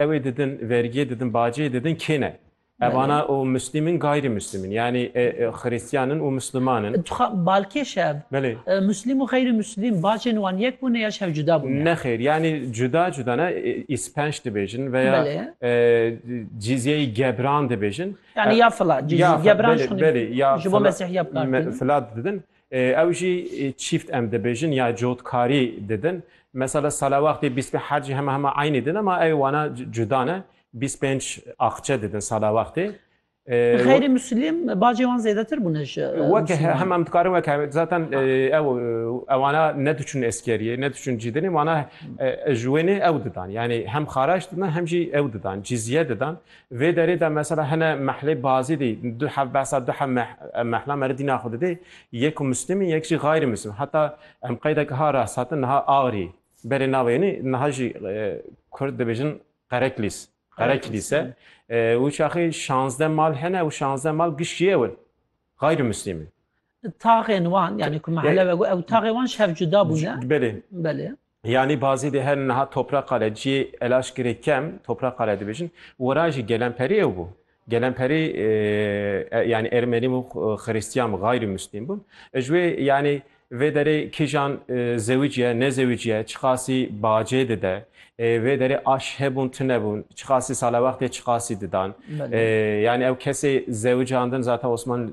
ew ê didin, vergiyê didin, baciyê didin kê ne? Evana û Muslîm in gayrî Muslîm in yanî Xirîstiyan in û Musliman in. Dixwam balkêş e ev. Belê. Muslîm û xeyrî Muslîm bacên wan yek bûne ya ji hev cuda bûne? Nexêr yanî cuda cuda ne îspenc dibêjin veya cîzyeyî gebran dibêjin. Yanî ya fila cîzyeyî gebran ji bo mesîhiya bi kar tînin. Fila didin. Ew jî çîft em dibêjin ya cotkarî didin. Mesele salawextê bîspê her cî hema hema eynî din ema ew wana cuda ne. Bîst pênc axçe didin salawextê. Xeyrê Muslim bacê wan zêdetir bûne ji Weke Musliman. hema em dikarin weke zaten ew ewana ne diçûn eskeriyê ne diçûn cîdinê wana ji wê nê ew didan. Yanî hem xaraç didan hem jî ew didan cîzye didan. Vê derê de mesela hene mehlê bazî dî du hev behsa du hev mehla me re dîna xwe didê. Yek ku mislîm in yek jî xayrî mislîm. Heta em qeydeke ha re satin niha Agirî berê navê yenî niha jî kurd dibêjin Qereklîs. Qereklîs e. Û çaxê şazdeh mal hene û şazdeh mal giştî ew in. Xayrî mislîm in. Taxên wan yanî ku mehle ve got ew taxê wan ji hev cuda bûne. Belê. Belê. Yanî bazî dê her niha topraqa re ciyê elaşkirê kem topraqa re dibêjin. Wira jî gelemperî ew bû. Gelemperî yanî ermenî bûn, xirîstîyan bûn, xayrî mûslîm bûn. Ji wê yanî vê derê kîjan zewîc ye, ne zewîc ye, çiqasî bacê dide, vê derê aş hebûn tune bûn, çiqasî salewextê çiqasî didan. Yanî ew kesê zewican din zaten Osman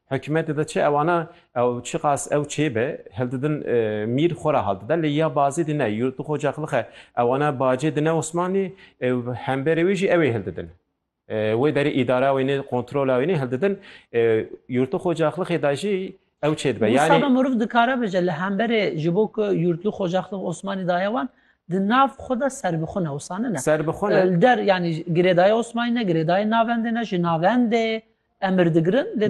Hikûmetê de çi ewana ew çiqas ew çê be hildidin mîr xwe re haldide lê ya bazê dî ne yûrtu xwe caqlixe ewana bacê dine Osmanlî ê û hemberê wê jî ew ê hildidin wê derê îdara wê nê kontrola wê nê hildidin yûrtu xwe caqlixê de jî ew çê dibe yanî. Wisa be meriv dikare bije li hemberê ji bo ku yûrtu xwe caqlix Osmanlî daye wan di nav xwe de serbixwe ne wisa ne ne. Serbixwe ne. Li der yanî girêdayê Osmanlî ne girêdayê navendê ne ji navendê emir digirin lê